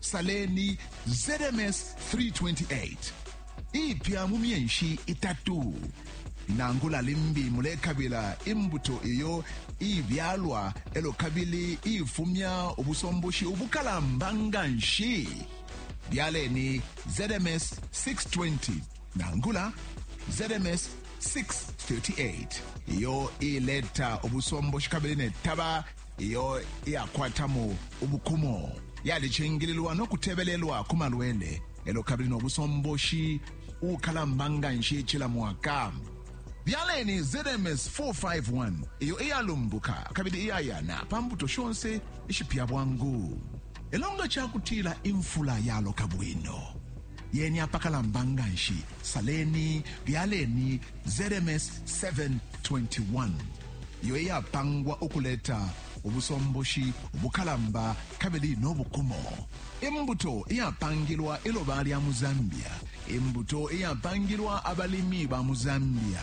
Saleni ZMS 328 ipya mu myenshi itatu nangula limbi mulekabila imbuto iyo ibyalwa elo kabili ifumya ubusomboshi ubukalamba nga nshi byaleni ZMS 620 nangula ZMS 638 iyo ileta ubusomboshi kabili netaba iyo iyakwatamo ubukumo yalicingililwa no kutebelelwa ku malwele elo kabili no busomboshi ukalamba nga nshi cila mwaka byaleni zms 451 iyo iyalumbuka kabili iyayana pa mbuto shonse ishipya bwangu elo nga cakutila imfula yaloka bwino yeni apakalamba nga nshi saleni byaleni zms 721 iyo iyapangwa ukuleta ubusomboshi ubukalamba kabili n'obukumo imbuto iyapangilwa iloba lya mu zambia imbuto iyapangilwa abalimi ba mu zambia